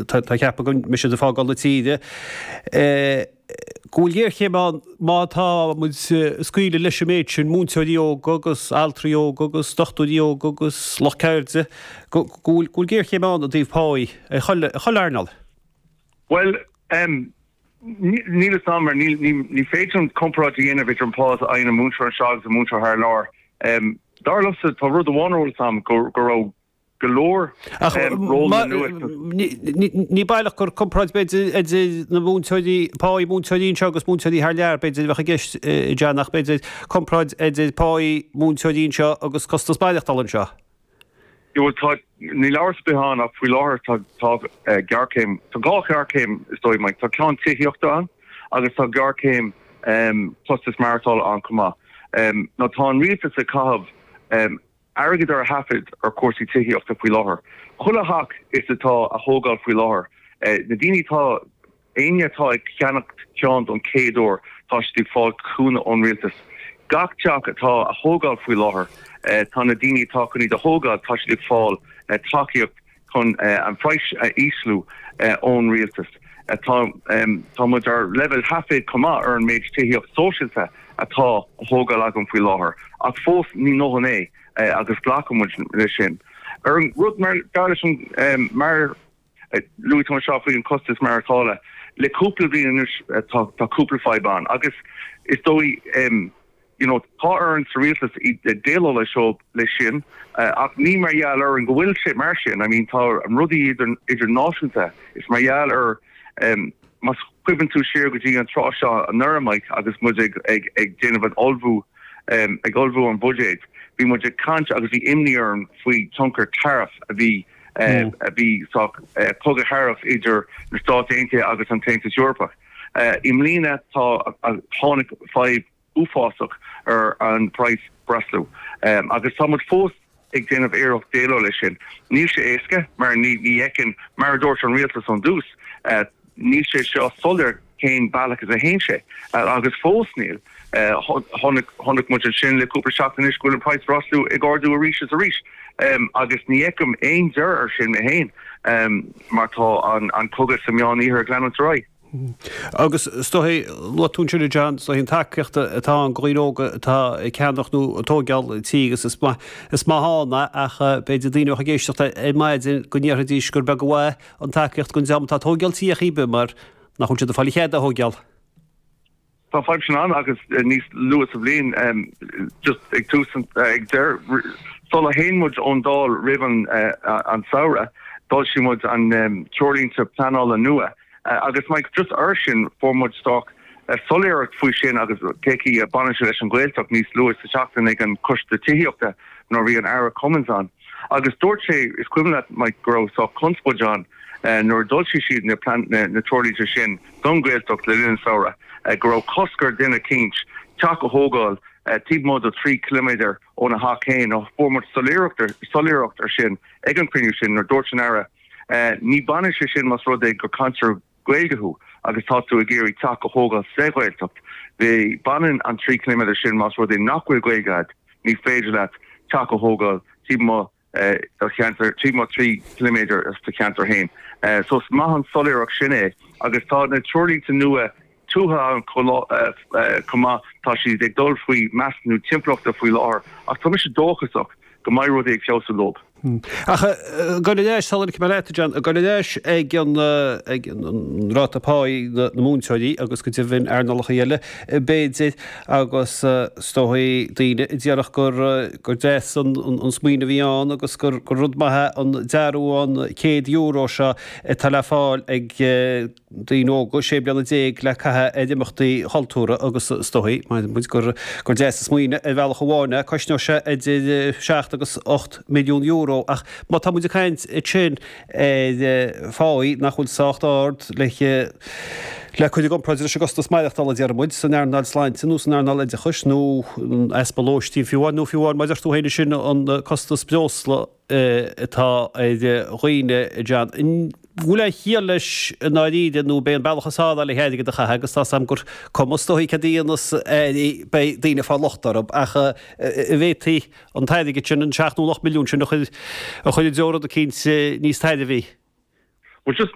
Tá, cheapfá go, má tá siad ag fágáil na tíre, go bhfuil géarchéim ann má tá muid ag scaoileadh leis an méid sin múinteoirí óga agus altraí óga agus dochtúirí óga agus lucht ceirde óga, go bhfuil géarchéim ann i dtaobh páí i chuile earnáil. Bhuel, níl 'fhios a'm, mar ní féidir liom comparáid a dhéanamh idir an phá atá ag an múinteoir anseo agus an múinteoir thar lear. Dar liomsa, tá rud amháin ar eolas a'm, go raibh go leor. Ní baileach gur comparáid b'fhéidir idir na múinteoirí, páí múinteoirí anseo agus múinteoirí thar lear b'fhéidir a bheadh i gceist, John, ach b'fhéidir comparáid idir páí múinteoirí anseo agus costas maireachtála anseo? Bhuel, tá, níl amhras ar bith ann ach faoi láthair tá géarchéim, tá dhá ghéarchéim is dóigh mé, tá ceann tithíochta ann agus tá géarchéim costas maireachtála ann chomh maith. Now tá an rialtas ag caitheamh, airgead ar a thaifead ar chúrsaí tithíochta faoi láthair. Chuile theach atá á thógáil faoi láthair, na daoine atá, éinne atá ag ceannacht ceann don chéad uair, tá siad ag fáil cúnamh ón rialtas. Gach teach atá á thógáil faoi láthair, tá na daoine atá chun iad a thógáil, tá siad ag fáil tacaíocht. chun an praghas a ísliú ón rialtas. Tá muid ar leibhéal thaifid chomh maith ar an méid tithíocht sóisialta atá á thógáil againn faoi láthair, ach fós ní dóthain é agus glacann muid leis sin. Ar an rud mar gheall ar an, mar a luaigh tú anseo faoi an costas maireachtála, le cúpla bliain anois tá cúpla fadhb ann agus is dóigh. you know tá orainn sa rialtas déileáil leis seo leis sin ach ní mar gheall orainn go bhfuil sé mar sin I mean tá rudaí idir idirnáisiúnta is mar gheall ar em más cuimhin tú siar go dtí an tráth seo anuraidh Mike agus muid ag ag ag déanamh an ullmhú em ag ullmhú an bhuiséid bhí muid ag caint agus bhí imní orainn faoi tionchar tariff a bhí em a bhí soc cogadh tariff idir na Stáit Aontaithe agus an tAontas Eorpach eh i mbliana tá tháinig fadhb uafásach ar an price breosla agus tá muid fós ag déanamh iarracht déileáil leis sin. Níl sé éasca mar ní fheiceann, mar a dúirt an rialtas ón dtús, níl sé seo soiléir cén bealach is a théann sé agus fós níl. Chonaic muid ansin le cúpla seachtain anois go bhfuil an price breosla ag ardú arís is arís agus ní fheicim aon deireadh air sin mé féin mar tá an cogadh sa Meánoirthear ag leanúint ar aghaidh. Agus is dóigh, luaigh tú ansin, a John, is dóigh an tacaíocht atá ann go dhaoine óga atá ag ceannach nó ag tóigeáil tí agus is maith, is maith ann é ach b'fhéidir daoine a bheadh ag éisteacht ar maidin go ndéarfaidís gur beag an mhaith an tacaíocht dhóibh má tá tóigeáil tí ar chaoi ar bith mar nach bhfuil siad ag fáil an chead a thóigeáil. Tá fadhb sin ann agus níos luaithe sa bhliain, just ag tús an, ag deireadh, sula dtéann muid ón Dáil roimh an an samhradh, d'fhoilsigh muid na treoirlínte pleanála nua agus mar just air sin fuair muid sách soiléireacht faoi sin agus cén chaoi a mbaineann sé leis an Ghaeltacht níos luaithe sa seachtain ag an Coiste Tithíochta nuair a bhí an tAire Cummins ann agus dúirt sé, is cuimhin leat Mick go raibh sách conspóid ann nuair a d'fhoilsigh siad na treoirlínte sin don Ghaeltacht le linn an samhradh go raibh cosc ar dhuine eicínt teach a thógáil taobh amuigh de thrí chiliméadar óna theach fhéin agus fuair muid soiléireacht ar sin ag an chruinniú sin nuair a dúirt an tAire ní bhaineann sé sin más rud é gur cainteoir Gaeilge thú agus tá tú ag iarraidh teach a thógáil sa Ghaeltacht baineann an trí chiliméadar sin más rud é nach bhfuil Gaeilge agat ní féidir leat teach a thógáil taobh amuigh do cheantar, trí, mar 3 km do do cheantar féin. So is maith an soiléireacht sin é agus tá na treoirlínte nua tuaithe ann chomh maith, tá siad ag dul faoi mheasúnú timpeallachta faoi láthair ach tá mise dóchasach go mbeidh rudaí ag feabhsú leo. Ach goirid ón deis, sula ligfidh mé leat, John, goirid ón deis ag an ráta páí na múinteoirí agus go deimhin earnálacha eile, b'fhéidir, agus is dóigh daoine a déarfadh gur deas an smaoineamh a bhí ann agus gur rud maith é an dearbhú an €100 seo atá le fáil ag daoine óga sé bliana déag le caitheamh ar imeachtaí chultúrtha agus is dóigh, abraimid, gur deas an smaoineamh ar bhealach amháin é. Cosnóidh sé idir seacht agus ocht milliún euro ach má tá muid ag caint ansin, ar phá nach bhfuil sách ard le cur i gcomparáid leis an gcostas maireachtála, déarfaimid, san earnáil sláinte nó san earnáil oideachais, nó an easpa lóistín fiú amháin, nó fiú amháin maidir orthu fhéin sin an costas breosla atá ar dhaoine. An bhfuil aon chiall leis i ndáiríre nó ab é an bealach is fearr le hairgead a chaitheamh, agus tá 's agam gur cuma is dóigh céard a dhéanfas, beidh daoine ag fáil locht orainn, ach an bhféadfaí an t-airgead sin, an seacht nó an ocht milliún sin, a chur i dtreo rud eicínt níos tairbhí. Bhuel, just.